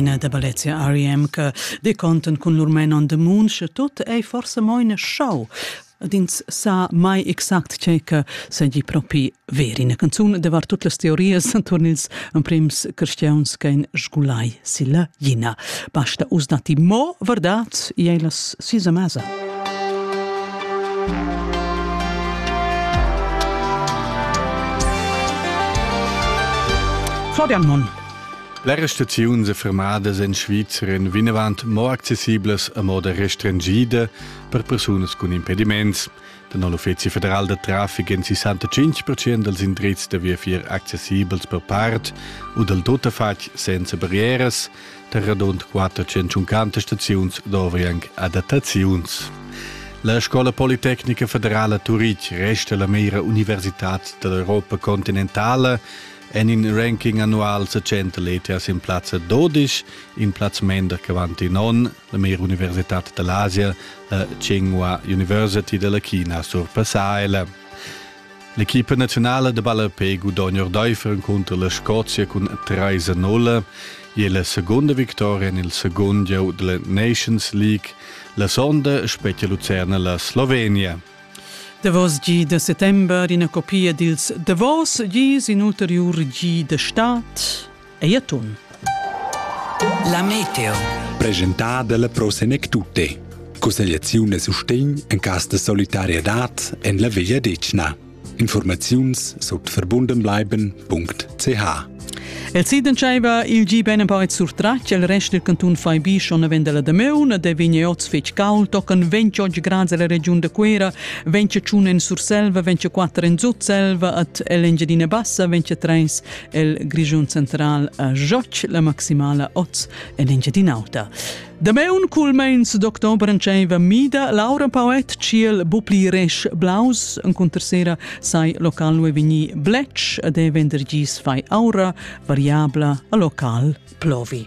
Ina da Balezia R.E.M. che deconten cun lur Men on the Moon, sche tut ei forse mo in show. Dins sa mai exact che che segi propi ver ina canzun de var tut las teories turn ils emprims cristians che in sgulai silla jina. Basta us dati mo verdad ei las sisa mesa. Florian Monn. Le restricziuns e fermadas en Svizra en vinavant mo accessiblas a moda restringida per persunas cun impediments. Dann l'Uffizi federal da traffic en 65% dels indrizs da viafier accessibels per part u del tuttafatg senza barrieras, tar radund 450 staziuns dovri anche adattaziuns. La Scola Politecnica Federala Turitg resta la mera universitad dell'Europa continentale en in ranking annual sa centa letas in plazza 12, in plaz mender che avanti non, la mera universitad dell'Asia, la Tsinghua University della China surpassaila. L'equipa naziunala da ballapé gudogna ordaifer encunter la Scozia cun 3-0 e la segunda victoria en il segund gieu della Nations League. La sonda spetga Lucerna la Slovenia. Davos gi da settember ina copia dils davos gis in ulteriur gi da stad. ei a tun. La meteo. Presentà dalla Pro Senec Tutte. Cussegliaziun e sustegn en cas de solidarietad en la Veglia Decna. Informaziuns sut verbundenbleiben.ch El siden tschaiva il gi ben empau surtratg el rest del canton fai bi schon venda la Demeun de vigne oz fetg caul tocan 28 grads alla regiun de Quera 25 en Surselva 24 en Zutselva at Engiadina Bassa 23 el Grischun Central a Joc la maximala oz en Engiadin'Auta. Dameun culmeins doctor Brantscheva Mida, Laura Poet Ciel Bupli Resch Blaus en cuntersera sai local ue vigni Bletsch ad e vendergis fai aura variabla a local plovi.